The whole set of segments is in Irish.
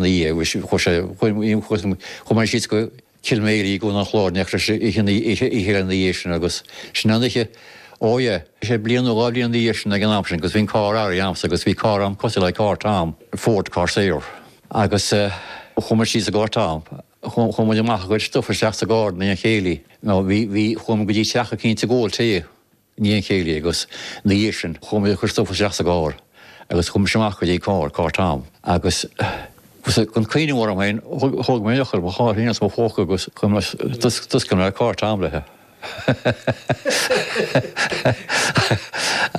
na dhiaidh sin chuaigh muid síos go Kilmaley i gCo an Chláir an oíche oíche ina dhiaidh sin agus sin an oíche oh yeah sé bliain nó dhá bhliain na dhiaidh sin ag an am sin agus bhí an carr a'msa agus bhí carr a'm cosúil le carr Tom, Ford Corsair, agus chuaigh muid síos i gcarr Tom chuaigh muid amach ag cur stuif isteach sa gcarr i ndiaidh an chéilí nó bhí bhí chuaigh muid go dtí teach eicínt ag ól tae ndiaidh an chéilí agus ina dhiaidh sin chuaigh muid ag cur stuif isteach sa gcarr agus chuaigh mise amach go dtí an carr, carr Tom, agus gan cuimhneamh orm féin thóg mé eochair mo charr féin as mo phóca agus d'oscail mé carr Tom léi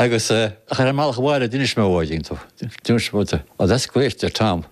agus ar an mbealach abhaile d'inis mé dó, oh that's great, a deir Tom.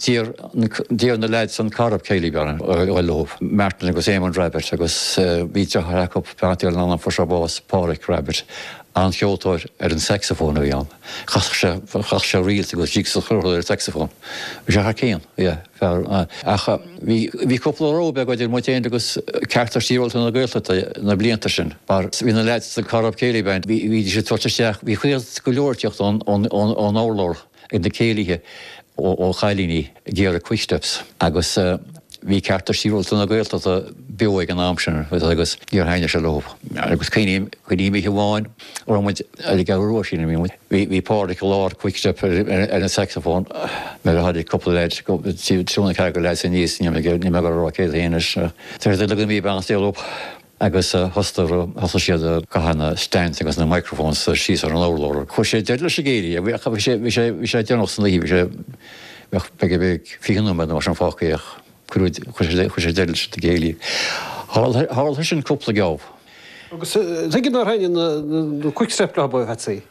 D'iarr na leaids sa Corrib Céilí Band orm a ghoil leo, Martin agus Eamonn Rabbitte, agus bhí deartháir acu, beannacht Dé lena anam fuair sé bás, Páraic Rabbitte, an-cheoltóir ar an saxophone a bhí ann. Chasadh sé, chasadh sé reels agus jigs is chuile shórt ar an saxophone. Bhí sé thar cinn, yeah, fear, ach bhí, bhí cúpla row beag idir muid féin agus Cearta Sibhialta na Gaeltachta na blianta sin mar bhí na leaids sa Corrib Céilí Band, bhídís ag tabhairt isteach, bhí cuireadh go leor ag teacht ón, ón, ón, ón urlár. ag na céilithe ó chailíní ag iarraidh quick steps agus bhí cearta sibhialta na Gaeltachta beo ag an am sin agus níor thaitnigh sé leo. Agus cuimhním, cuimhním oíche amháin a raibh muid ar an gCeathrú Rua sílim a bhí muid, bhí Pádraic i lár quick step ar an saxophone nuair a tháinig cúpla leaid, triúr nó ceathrar leaid aníos, níl mé ag goil a rá cé acu anois, taobh le Jimí Barnes Dale Óg. Agus thosaigh siad ag caitheamh na stands agus na microphones síos ar an urlár. Chuir sé deireadh leis an gcéilí. Bhí sé déanach san oíche, bheadh beagnach fiche nóiméad nó mar sin fágtha ach chuir sé deireadh leis an gcéilí. Tharla sé sin cúpla geábh. Agus tuige nár thaitnigh na quick steps leo a Phatsy?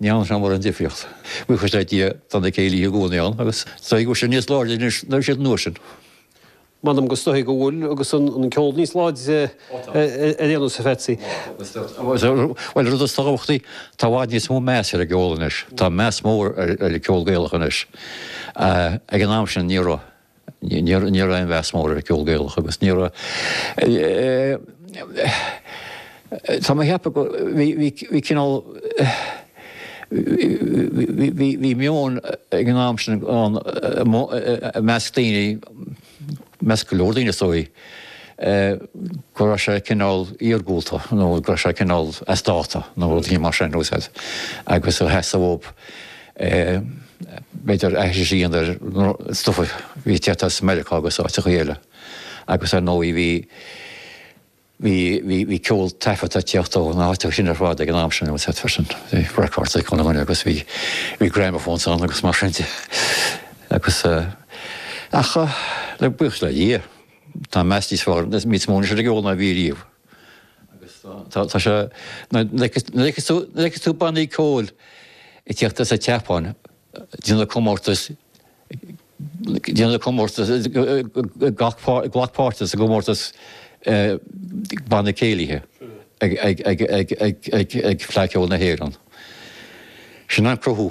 Ní ann seanmóir an difríocht. Buíochas le Dia, tá na céilithe i gcónaí ann agus is dóichí go bhfuil siad níos láidre anois ná a bhí siad an uair sin. M'anam is dóichí go bhfuil, agus an ceol níos láidre déarfainnse a Pheatsaí. Bhuel, rud is tábhachtaí, tá i bhfad níos mó meas ar an gceol anois. Tá meas mór ar an gceol Gaelach anois. Ag an am sin ní raibh. Ní raibh aon mheas mór ar an gceol Gaelach agus ní raibh. Tá mé a cheapadh bhí cineál. Bhí meon ag an am sin ann i measc daoine, i measc go leor daoine is dóigh, go raibh sé cineál iargúlta nó go raibh sé cineál as dáta nó rud éigin mar sin, agus a sheasamh. b'fhéidir, aithris ar an stuif a bhí ag teacht as Meiriceá agus áiteachaí eile. Agus, ar ndóigh, bhí, bhí, bhí, bhí ceol taifeadta ag teacht ó na háiteachaí sin ar fad ag an am sin, agus d'fhéadfá sin, bhí records acu agus bhí, bhí gramophones ann agus mar sin de. Agus, ach, le, buíochas le Dia, tá meas níos fearr, níos mó anois ar an gceol ná a bhí riamh. Agus tá sé, nuair a fheiceas tú bannaí ceoil ag teacht as an tSeapáin, ag déanamh na gcomórtas, ag déanamh na gcomórtas, ag glacadh páirt sa gcomórtas banna céilithe ag Fleadh Cheoil na hÉireann. Sin an cruthú.